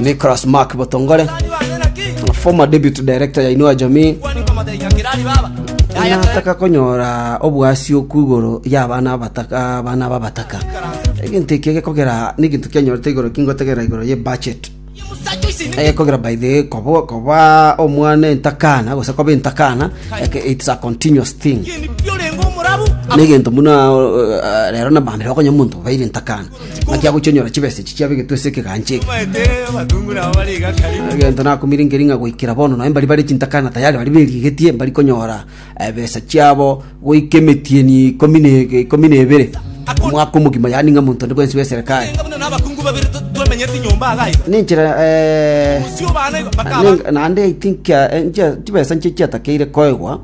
Nicholas Mark Botongole, former deputy director ya Inua Jamii, nataka konyora obwasioku igoro y'abana abataka abana babataka egento eki gekogera neginto kianyorete igoro kingotegera igoro ye budget ekogera by the way kobo koba omwana entakana gose koba entakana like it's a continuous thing negento muna uh, rero nabambire okonya omonto baire entakana ng'aki agochia onyora chibesa echi chiabe egetwese ekegancha eke. Egento nakomirengeria ng'a goikera bono nonye mbari bare chintakana tayari baria berigetie mbari konyora ebesa chiabo goika emetieni ikomi na ege- ikomi na ebere omwaka omogima yaani ng'a monto onde bwensi bwa eserekari ninchera eh, neng- naende I think eh, nchia- chibesa nchio chiatakeire koegwa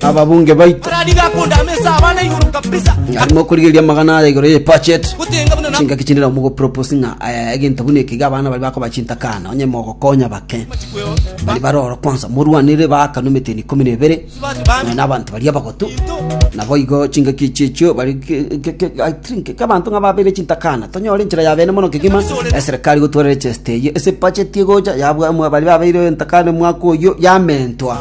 ababunge baito arariga akunda amesa abana igoro kabisa arimo korigereria amagana aya igoro ye budget gutenga buna na chingaki chinde nabo mogopropose ng'a eh, egento buna ekiga abana bari bakoba chintakana onye mogokonya bake machikweo bari baroro kwanza morwanire baakana emeteni ikomi na ebere bati bana nonya n'abanto baria bagotu into nabo igo chingaki echi echio bari ke- ke- ke- I think ke abanto ng'a babere chintakana tonyore enchera ya bene mono kegima eserikari gotwarera chesite eye ase budget egocha yabwa mwa- bari babeire entakana mwaka oyo yamentwa